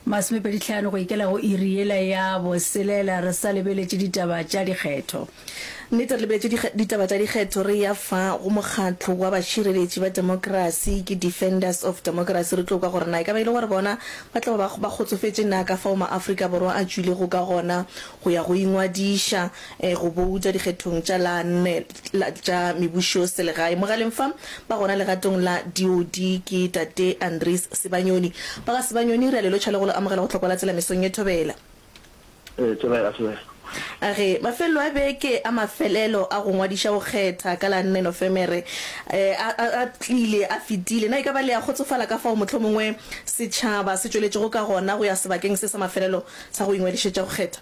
Masomepedi tlhano go ikela go iri yela ya boselela re sa lebeletše ditaba tša dikgetho. Nnete re lebeletše dikge, ditaba tša dikgetho re ya fa go mokgatlo wa bašireletši ba demokrasi ke Defenders of Democracy re tlo kwa gore na e ka ba e le gore bona ba tla ba ba kgotsofetše na ka fao maAfrika Borwa a tšwilego ka gona go ya go ingwadiša Go bouta dikgethong tša la nne tša mebušoselegae mogaleng fa ba gona legatong la DOD ke Tate Andries Sibanyoni. Ba ga Sibanyoni re a le lotšha le go lo amogela go Tlhokwa la Tsela mesong ye. Thobela. Thobela, thobela. A re mafelelo a beke a mafelelo a go ngwadiša go kgetha ka la nne Nofemere a a tlile a fetile, na e ka ba le a kgotsofala ka fao mohlomongwe setšhaba se tšweletšego ka gona go ya sebakeng se sa mafelelo sa go ingwadišetša go kgetha?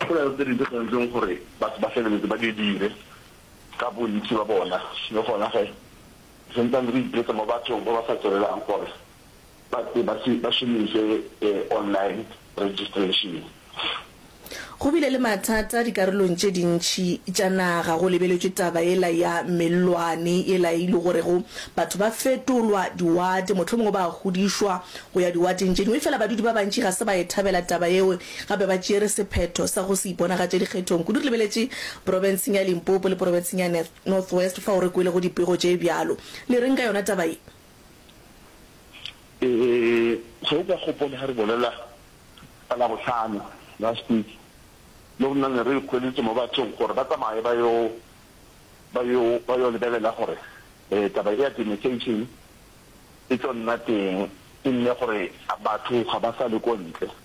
Dipelaelo tse dintši tse dirileng gore batho ba feleletse ba di dire ka bontši bja bona. Le gona ge re santsane re ipeetsa mo bathong ba ba sa tswelelang gore ba tle ba se ba šomiše online registration, Go bile le mathata dikarolong tše dintši tša naga go lebeletšwe taba yela ya mellwane yela e lego gorego batho ba fetolwa diwate, mohlomongwe ba a hudišwa go ya diwateng tše dingwe. Efela badudi ba bantši ga se ba e thabela taba yeo Gape ba tšere sephetho sa go se iponagatše dikgethong. Kudu re lebeletše profenseng ya Limpopo le profenseng ya North West fao re kwelego dipego tše bjalo. Le reng ka yona taba ye? Ee, ge o ka gopola ge re bolela ka Labohlano, last week, le rena ne re hweletše mo bathong gore ba tsamaye ba yo, ba yo, ba yo lebelela gore taba ye ya demarcation e tlo nna teng, e nne gore batho ga ba sa le ko ntle.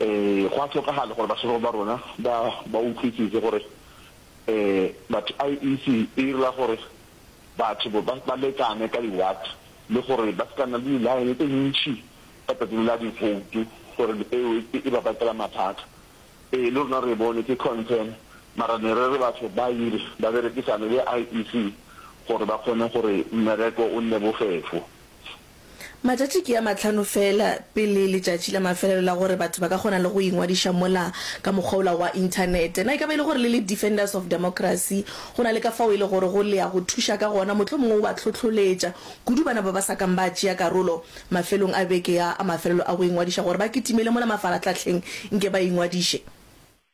Ee, go a hlokagala gore bašemane ba rona ba ba utlwisise gore ee, batho IEC e direla gore batho bo ba ba lekane ka di-ward le gore ba se ka nna le di-line tse ntšhi ka tsatsi la diboutu gore eo e e ba bakela mathata. Ee, le rona re e bone, ke concern, mara ne re re batho ba dire ba berekisane le IEC gore ba kgone gore mmereko o nne bofefo. Matšatši ke a mahlano feela pele letšatši la mafelelo la gore batho ba ka kgona le go ingwadiša mola ka mokgwa ola wa Inthanete. Na e ka ba e le gore le le Defenders of Democracy go na le ka fao e le gore go le ya go thuša ka gona, mohlomongwe o ba hlohloletša kudu bana ba ba sa kang ba tšea karolo mafelong a beke ya a mafelelo a go ingwadiša gore ba kitimele mola mafarahlahleng nke ba ingwadiše?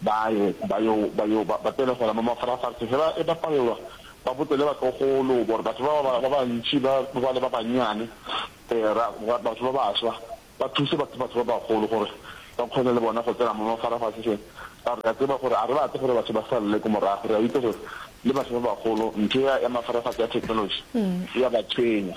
Ba ye, ba yo, ba yo, ba, ba tsene gona mo mafarafase, ge ba eba palelwa, ba botse le batlogolo, gore batho ba, ba, ba bantši ba, ba ba le ba bannyane, ee, ra, ra, batho ba baswa, ba thuse batho, batho ba bagolo gore ba kgone le bona go tsena mo mafarafaseseng. Ka gore re a tseba gore ga re batle gore batho ba salele ko morago. Re a itse gore le batho ba bagolo ntho ya, ya mafarafase, ya technology, e a ba tshwenya.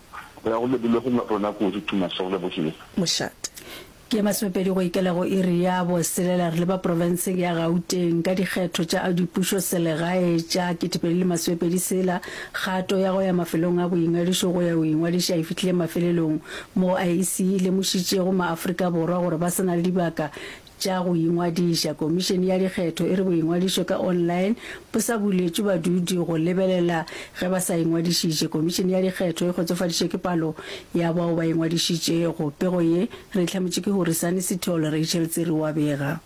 Go ya go lebile go rona kudu to my soul, Lebohile. Mošate. Ke ye masomepedi go ikela go iri ya boselela re leba profenseng ya Gauteng ka dikgetho tša dipušo selegae tša ketepedi le masomepedi sela. Kgato ya go ya mafelong a boingadišo go ya go ingwadiša e fihlile mafelelong moo IEC e lemošitšego maAfrika Borwa gore ba se na le dibaka Tša go ingwadiša, Komišene ya Dikgetho e re boingwadišo ka online bo sa buletšwe badudi go lebelela ge ba sa ingwadišitše. Komišene ya Dikgetho e kgotsofaditšwe ke palo ya bao ba ingwadišitšego. Pego ye re e hlametšwe ke Horisani Sithole, Rachel Tsiri o a bega.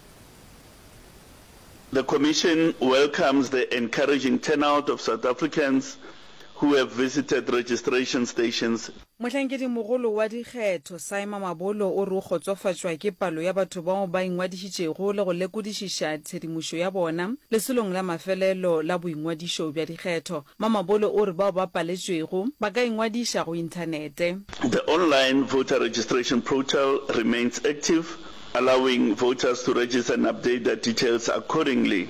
The Commission welcomes the encouraging turnout of South Africans who have visited registration stations. Mohlankedimogolo wa dikgetho, Saima Mabolo o re o kgotsofatšwa ke palo ya batho bao ba ingwadišitšego le go lekodišiša tshedimošo ya bona lesolong la mafelelo la boingwadišo bja dikgetho. Mma Mabolo o re bao ba paletšwego ba ka ingwadiša go inthanete. The online voter registration portal remains active, allowing voters to register and update their details accordingly.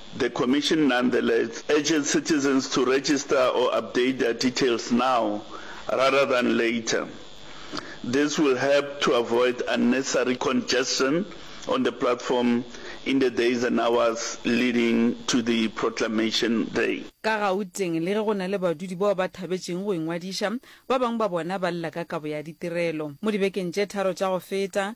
The Commission nonetheless urges citizens to register or update their details now rather than later. This will help to avoid unnecessary congestion on the platform in the days and hours leading to the proclamation day. Ka Gauteng, le ge go na le badudi bao ba thabetšeng go ingwadiša, ba bangwe ba bona ba lla ka kabo ya ditirelo. Mo dibekeng tše tharo tša go feta,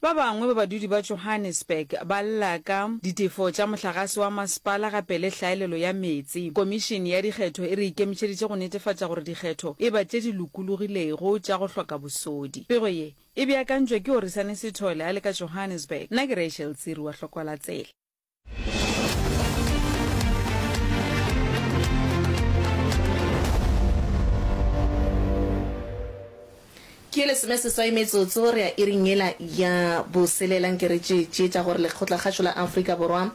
Ba bangwe ba badudi ba Johannesburg ba lla ka ditefo tša mohlagase wa masepala gape le hlaelelo ya meetse. Komišene ya dikgetho e re ikemetšeditše go netefatša gore dikgetho e ba tše di lokologilego tša go hloka bosodi. Pego ye e beakantšwe ke Orisani Sithole a le ka Johannesburg. Nna ke Rachel Tsiri wa Hlokola Tsela. ke lesome seswai metsotso re ya iring yela ya boselelang ke re tšeetšeetša gore lekgotlakgašo la afrika borwa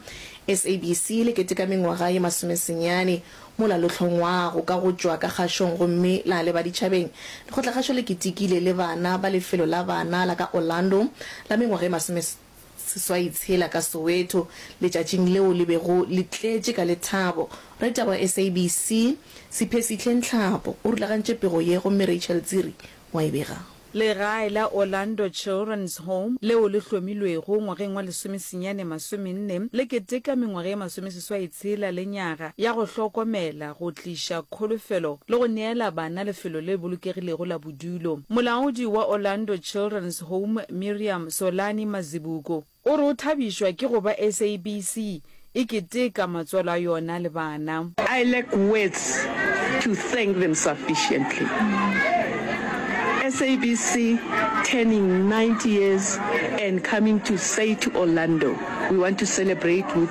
sabc le keteka mengwaga ye masomesenyane mola lo hlongwago ka go tšwa ka kgašong gomme la leba ditšhabeng lekgotlakgašo le ketekile le bana ba lefelo la bana la ka orlando la mengwaga ye masome Seswai tshela ka Soweto letšatšing leo le bego le tletše ka lethabo. Raditaba wa SABC, Siphesihle Nhlapo o rulagantše pego ye gomme Rachel Tsiri wa e bega. Legae la Orlando Children's Home, leo le hlomilwego ngwageng wa lesomesenyane masomenne, le keteka mengwaga ye masomeseswai tshela le nyaga ya go hlokomela, go tliša kholofelo le go neela bana lefelo le bolokegilego la bodulo. Molaodi wa Orlando Children's Home Miriam Solani Mazibuko. O re o thabišwa ke go ba SABC e keteka matswalo a yona le bana. I lack words to thank them sufficiently. SABC turning 90 years and coming to say to Orlando we want to celebrate with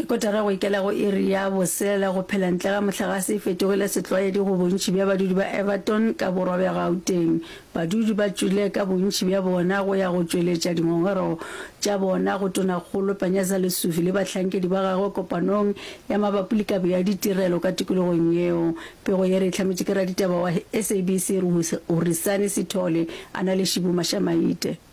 Ke kotara go ikela go iri ya boselela go phela ntle ga mohlagase e fetogile setlwaedi go bontši bja badudi ba Everton ka borwa bja Gauteng. Badudi ba tšwile ka bontši bja bona go ya go tšweletša dingongorego tša bona go Tonakgolo Panyaza Lesufi le bahlankedi ba gagwe kopanong ya mabapi le kabo ya ditirelo ka tikologong yeo. Pego ye re e hlametše ke raditaba wa SABC Ruri Sani Sithole a na le Shibu Mashamaite.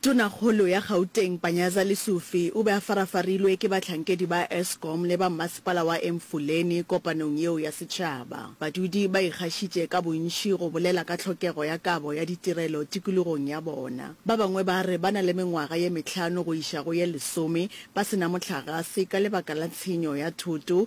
Tonakgolo ya Gauteng Panyaza Lesufi o be a farafarilwe ke bahlankedi ba Eskom le ba mmasepala wa Emfuleni kopanong yeo ya setšhaba. Badudi ba ikgašitše ka bontši go bolela ka tlhokego ya kabo ya ditirelo tikologong ya bona. Ba bangwe ba re ba na le mengwaga ye mehlano go iša go ye lesome ba se na mohlagase ka lebaka la tshenyo ya thoto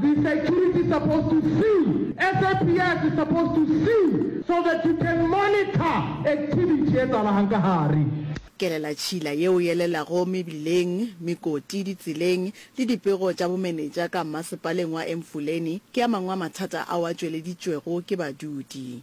The security is supposed to see, SAPS is supposed to see so that you can monitor activity e etsagalahang ka gare. Kelela tšhila yeo e elelago mebileng, mekoti, ditseleng le dipego tša bomenetša ka Mmasepaleng wa Emfuleni ke a mangwe a mathata ao a tšweleditšwego ke badudi.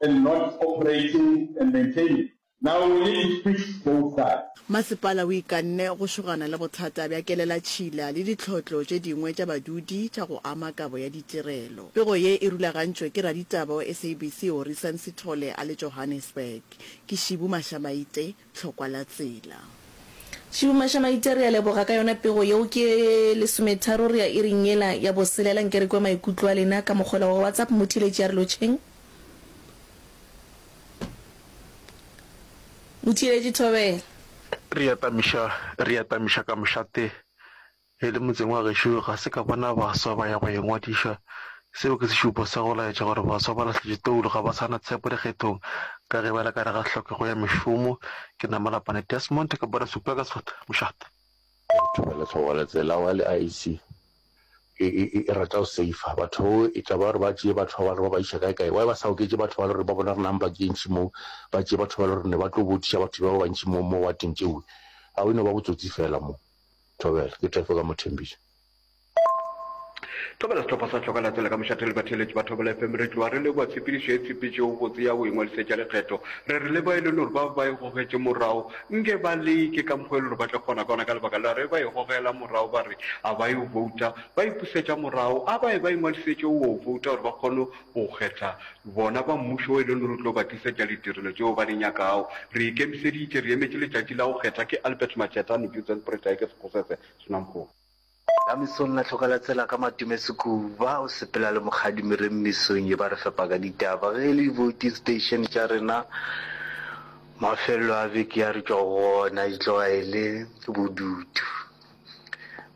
and not operating and maintaining. Now we need to fix both sides. Masepala o ikanne go šogana le bothata bja kelelatšhila le ditlhotlo tše dingwe tša badudi tša go ama kabo ya ditirelo. Pego ye e rulagantšwe ke raditaba wa SABC Horisan Sithole a le Johannesburg. Ke Shibu Mashamaite. hlokwa la tsela. Tšhuma xa maite re a leboga ka yona pego yeo ke lesometharo re ya iring yela ya boselela nke re kwe maikutlo a lena ka mokgwela wa WhatsApp mmu theletše ya re lotšheng mmu theletše thobela. Re atamiša re atamiša ka mošate E le motseng wa gešo ga se ka bona baswa ba ya go ingwadiša. Seo ke sešupo sa go laetša gore baswa ba lahletše toulo, ga ba sa na tshepo dikgethong ka ge ba le ka gare ga hlokego ya mešomo. Ke na Malapane Desmond, ke bona Super ka Sefata mošate. Batho ba le tlhogo le tsela wa le IEC e e e rata go safer batho e tla ba re ba tšee batho ba ba re ba ba iša kae kae why ba sa oketše batho ba le re ba bona re nang ba ke ntši moo ba tšee batho ba le re ne ba tlo botiša batho ba ba bantši moo mo wa teng tšeo ga o e no ba botsotsi fela moo Thobela, ke Tefo ka Mothembiša. Thobela, Sehlopha sa Hloka Latsela ka mošate le batheeletši ba Thobela FM re tloga re leboa tshepedišo ye tshepetšego botse ya go ingwadisetša lekgetho. Re re leboa e le nore bao ba e gogetše morago nke ba leke ka mokgo e le gore ba tla kgona ka ona ka lebaka la ge ba e gogela morago ba re a ba yo bouta ba ipusetša morago a ba e ba ingwadisetše o o bouta gore ba kgone O kgetha bona ba Mmušo wo e lego re tlo ba tlisetša ditirelo tšeo ba di nyakago. Re ikemiseditše, re emetše letšatši la go kgetha. Ke Albert Macheta, Nujutsen Pritayke Sekgosese, Swnamkop. La mesong la hloka la tsela ka matome sekuba o sepela le mokgadi mereng mesong ye ba re fepa ka ditaba ge e le dibouti station tša rena mafello a beke ya re tšwa go ona e tloga e le bodutu.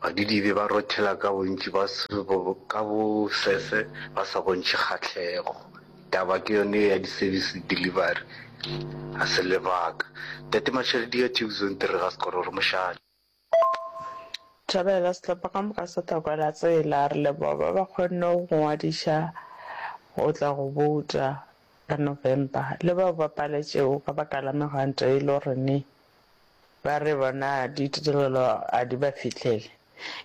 Badidibe ba rothela ka bontši ba ka bosese ba sa bontšhe kgahlego. Taba ke yone ya di-service delivery, ga se lebaka. Tate Mashadi ya Tube Zone Three ga sekoro re mošate. Thabela sehlopha ka moka se tla kwala tsela, re leboga ba ba kgonne go ngwadiša go tla go bouta ka November le bao ba paletšego ka baka la megwanto e lo rene Ba re bona ditirelo a di ba fihlele.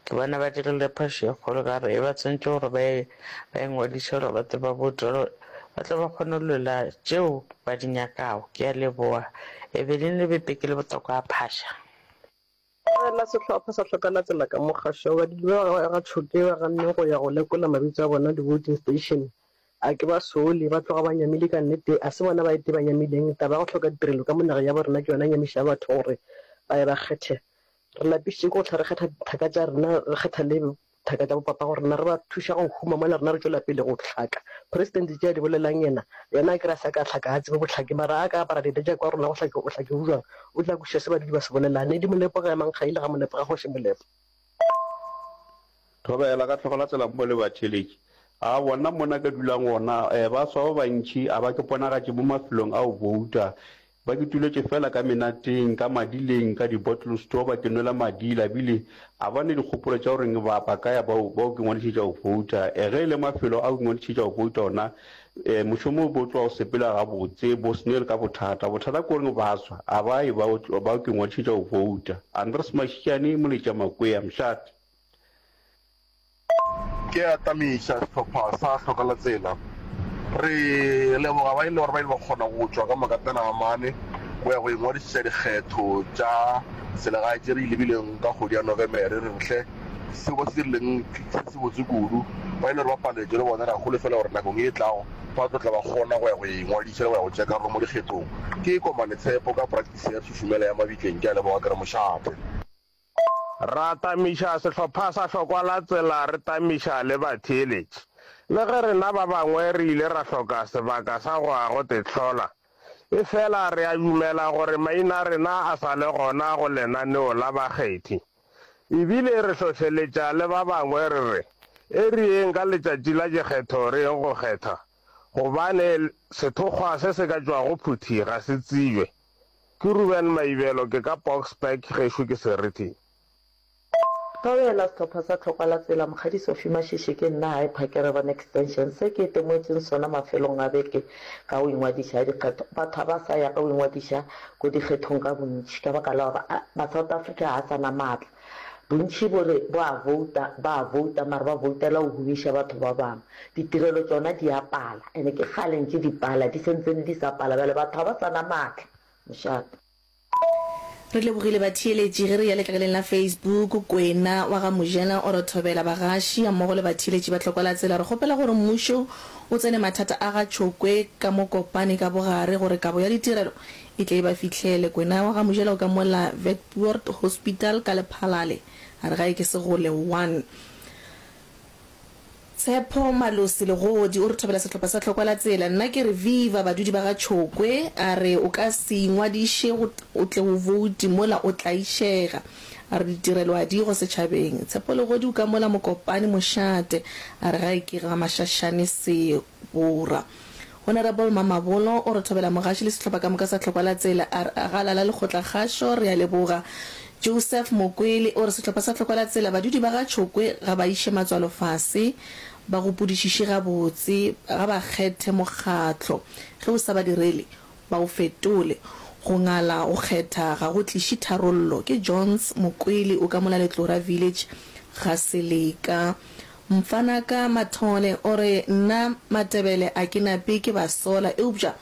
Ke bona ba dirile phošo e kgolo ka gore e ba swantšwe gore ba e, ba e ngwadiše gore ba tle ba boutwe gore ba tle ba kgone go lwela tšeo ba di nyakago. Ke a leboga. Evelyn le Bepe ke le botoka a phaša. Tlogela sehlopha sa hloka latsela ka mo kgašo. Badudi ba ga Tšhokeo ba ganneng go ya go lekola mabitso a bona di-voting station. A ke ba sole, ba tloga ba nyamile ka nnete? A se bona ba ete ba nyamileng? Taba ya go hloka ditirelo ka mo nageng ya bo rena ke yona e nyamišago batho gore ba ye ba kgethe. Re lapišitše ke go hlwa re kgetha dithaka tša rena, re kgetha le dithaka tša bopapa gore na re ba thuša go huma mola rena re tšwela pele go hlaka. Presidente tše a di bolelang yena, yena a ke re a se a ka hlaka, ga a tsebe bohlaki, mara a ka apara dieta tša kwa rena go hlaki, bohlaki bo bjang? O tla kwešiša se badudi ba se bolelang. Ne di Molepo ga ya Mankgaile, ga Molepo ga Kgoši Molepo. Thobela, Ka tlhogo la tsela mo le batheletši. A bona mo na ka dulang gona. E, baswa ba bantši a ba ke ponagatše mo mafelong a go bouta. Ba ke tuletše feela ka menateng, ka madileng, ka di-bottle store ba ke nwela madila. Bile a ba ne dikgopolo tša go reng ba, ba ka ya ba, ba yo ke ngwadišetša go bouta. E, ge e le mafelo a go ingwadišetša go bouta ona, E, mošomo o bo tloga o sepela gabotse, bo Snell ka bothata. Bothata ke goreng baswa a ba e ba o, ba o ke ngwadišetša go vouta. Andres Mashitšane, Moletša Makwea, Mshat. Ke atamiša sehlopha sa Hlokalatsela. Re leboga ba e le gore ba ile ba kgona go tšwa ka makatana a mane go ya go ingwadišetša dikgetho tša selegae tše re di lebileng ka kgwedi ya Nofemere. Re re hle. seo ba se dirileng se se botse kudu ba ile gore ba paletšwe le bona ra holofela gore nakong e tlago ba tlo tla ba kgona go ya go engwadiša le go ya go tšea karolo mo dikgethong ke komane tshepo ka praktisi ya tšhušumela ya mabitleng ke a leboga ke re mošate Ra tamiša sehlopha sa hlokwa la tsela re tamiša le batheeletši. Le ge rena ba bangwe re ile ra hloka sebaka sa go a go tehlola, efela re a dumela gore maina a rena a sa le gona go lenaneo la bakgethi. E bile re hlohleletša le ba bangwe re re, E re yeng ka letšatši la dikgetho re yeng go kgetha, gobane sethokgwa se se ka tšwago phuthi ga se tsibje. Ke Ruben Maibelo, ke ka Boksburg, gešo ke Serithi. Thao ya la sehlopha sa Tlhokwa la Tsela, Mokgadi Sophie Mashishi, ke nna Hy Phakerebo on Extension. Se ke itemoetšeng sona mafelong a beke ka o ingwadiša dikgetho. Batho ga ba sa ya ka o ingwadiša ko dikgethong ka bontši ka baka la gore ba South Africa ga sa na maatla. Bontši bo re bo a vouta, ba a vouta mara ba voutela go humiša batho ba bangwe. Ditirelo tšona di a pala and ke kgale ntše di pala, di sentse di sa pala bjale batho ga ba sa na maatla mošate. Re lebogile batheeletši ge re ya letlakaleng la Facebook, Kwena wa ga Mojela o re thobela bagaši gammogo le batheeletši ba Tlhokwalatsela. Re kgopela gore mmušo o tsene mathata a ga Tšhokwe ka mo Kopane ka bogare gore kabo ya ditirelo e tle e ba fihlele. Kwena wa ga Mojela o ka mo la Vectbuoord Hospital ka Lephalale a re gae ke Segole 1. Tshepo Malosi Legodi o re thobela sehlopha sa Tlhokwa la Tsela. Nna ke re viva badudi ba ga Tšhokwe. A re o ka se ingwadiše go o tle o vouti mola o tlaišega. A re ditirelo a di go setšhabeng. Tshepo Legodi o ka mola Mokopane mošate. A re ga e ke ga mashashane seo. Borwa. Honourable Mamabolo o re thobela mogaši le sehlopha ka moka sa Tlhokwa la Tsela, a re a ga lala lekgotla kgašo, re a leboga. Joseph Mokwele o re sehlopha sa Tlhokwa la Tsela badudi ba ga Tšhokwe ga ba iše matswalo fase, ba gopodišiše gabotse, ga ba kgethe mokgatlo, ge o sa ba direle ba o fetole. Go ngala go kgetha ga go tliše tharollo. Ke Johns Mokwele o ka mola Letlora Village ga Seleka. Mfanaka Mathole o re, Nna Matebele a ke nape ke ba sola, eupša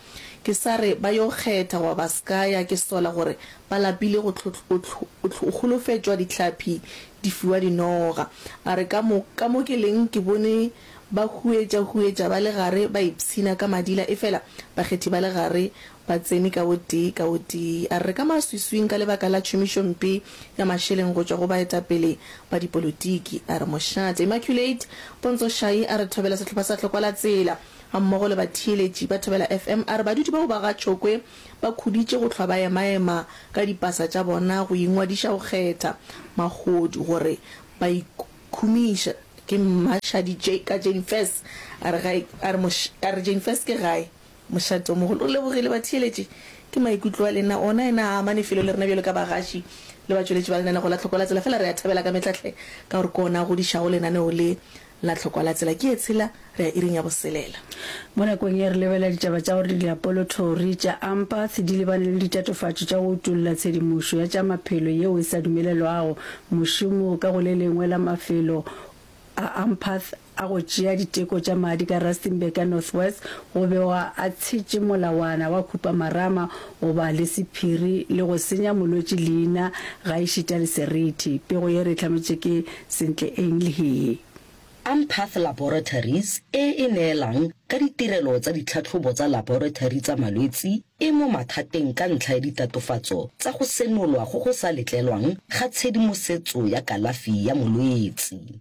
ke sa re ba yo kgetha goba ba s'ka ya, ke sola gore ba lapile go tlhotl-otlh-otlh-o holofetšwa dihlapi di fiwa dinoga. A re, Ka mo, ka mo ke leng ke bone ba huetša-huetša ba le gare ba ipshina ka madila efela bakgethi ba le gare Ba tsene ka o tee ka o tee, a re, ka maswiswing ka lebaka la tšhomišompe ya mašeleng go tšwa go baetapele ba dipolotiki. A re, Mošate Immaculate Pontso Shai a re thobela sehlopha sa Tlhokwalatsela, gammogo le batheeletši ba Thobela FM. A re badudi bao ba ga Tšhokwe ba khuditše go hlwa ba emaema ka dipasa tša bona go ingwadiša go kgetha mahodu gore ba ikhumiša. Ke Mashadi J. Ka Jane First. A re, Ga e, a re, Moš, a re, Jane First ke gae? Mošatomogolo o lebogile batheeletši. Ke maikutlo a lena ona yena a amane felo le rena bjalo ka bagaši le batšweletši ba lenaneo la Tlhokwa la Tsela. Fela re a thabela ka metla hle ka gore ke ona a godišago lenaneo le la Tlhokwa la Tsela. Ke Etshela, re ya iring ya boselela. Mo nakong ye re lebelela ditaba tša gore diapolothori tša Ampath di lebane le ditatofatšo tša go utolla tshedimošo ya tša maphelo yeo e sa dumelelwago mošomo ka go le lengwe la mafelo a Ampath a go tšea diteko tša madi ka Rustenburg ya Northwest go begwa a tshetše molawana wa khupamarama go ba le sephiri le go senya molwetši leina gaešita le seriti. Pego ye re e hlametše ke Sentle Eng le Hee. Ampath Laboratories e e neelang ka ditirelo tsa ditlhatlhobo tsa laboratory tsa malwetsi e mo mathateng ka ntlha ya ditatofatso tsa go senolwa go go sa letlelwang ga tshedimosetso ya kalafi ya molwetsi.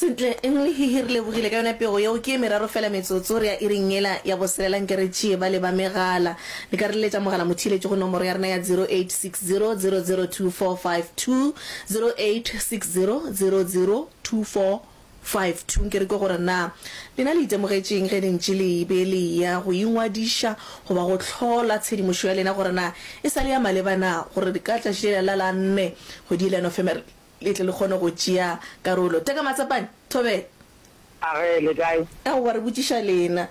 Sentle, eng le hihi re lebogile ka yona pego yeo? Ke ye meraro fela metsotso re ya iring yela ya boselela nke re tšee bale ba megala. Le ka re leletša mogala motheeletši go nomoro ya rena ya 0860 002 452, 0860 002 452. Nke re kwe gore na lena le itemogetše eng ge le ntše le be le eya go ingwadiša goba go hlola tshedimošo ya lena gore na e sa le ya maleba na, gore ka tšatši lela la la nne kgwedi yela ya Nofemere Le tle le kgone go tšea karolo. Teka matsapane. Thobela. Age, le kae? Aowa, re botšiša lena.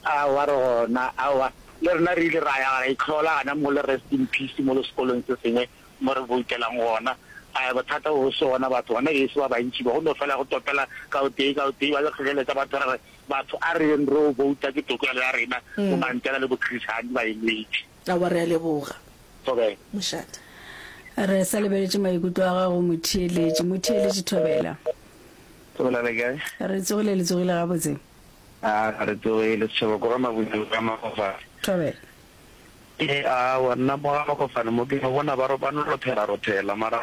Aowa, re gona. Aowa, le rena re ile ra ya ra itlhola gona mo le Rest in Peace molo sekolong se sengwe mo re boutelang gona. Ae, bothata bo boso gona batho gona geso ba bantši ba go no fela go topela ka o tee ka o tee, ba yo hloleletša batho re re, Batho a re yeng re yo bouta ke tokelo ya rena, bo Mandela le bo Chris Hani ba e lwetše. Aowa, re a leboga, mošate. Re sa lebeletše maikutlo a gago, motheeletši. Motheeletši Thobela. Thobela, le kae? Re tsogile, le tsogile gabotse? Aa, ga re tsoge, le setšhaba ko ga Mabuneng ka Makgofane. Thobela. Ee, aowa, nna mo ga Makgofane mo ke no bona ba ba no rothela-rothela, mara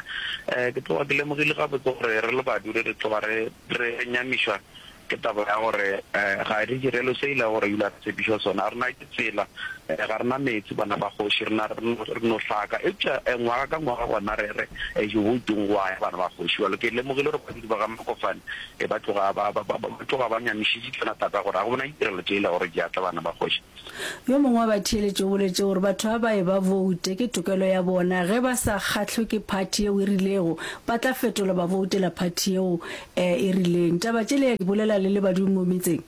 um ke tloga ke lemogile gabotse gore re le Badudi re tloga re re nyamišwa Ke taba ya gore ga re direlwe se e lego gore ebile a re tshepišwa sona. A re na ke tsela, ga re na meetse bana ba kgoši, re na re no hlaka. Eupša ngwaga ka ngwaga gona re re Jehoitong go a ya bana ba kgoši. Bjalo ke lemogile gore badudi ba ga Makofane ba tloga ba ba ba tloga ba nyamišitše tsona thata gore ga go na ditirelo tše e lego gore di a tla bana ba kgoši. Yo mongwe wa batheeletši o boletše gore batho ba ba eba boute ke tokelo ya bona, ge ba sa kgahlwe ke phathi yeo e rilego ba tla fetola ba boutela phathi yeo e e rileng. Taba tše le ya di bolela le le badudi mo metseng?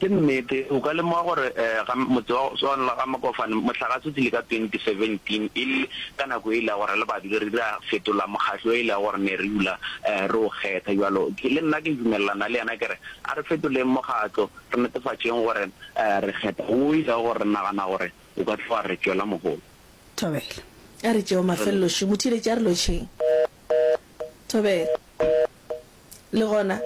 Ke nnete, o ka lemoga gore ga motse wa swana le ga Mokofane mohlagase o tlile ka 2017 e le ka nako e le ya gore le badudi re ile ra fetola mokgatlo e le ya gore ne re dula re o kgetha. Bjalo le nna ke dumelelana le yena ke re a re fetoleng mokgatlo. Re netefatšeng gore re kgetha wo o ilego re nagana gore o ka tla wa re tšwela mohola. Thobela. A re tšeo mafelelo šo, motheeletši a re lotšheng. Thobela. Le gona?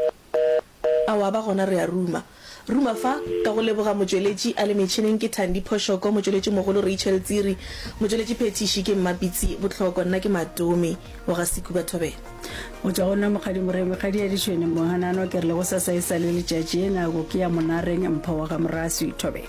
Aowa, ba gona re a ruma. Ruma fa, ka go leboga motšweletši a le metšhineng ke Thandi Phoshoko, motšweletšimogolo Rachel Tsiri, motšweletšiphethiši ke Mmapitsi Botlhoko, nna ke Matomi. o ga Seku ba thobela. O tšwa go nna mokgadi Moreng, mekgadi ya ditšhwene mo hanano ke re le go sasa e sa le letšatši e nako ke ya monareng mpho wa ga Moraswi thobela.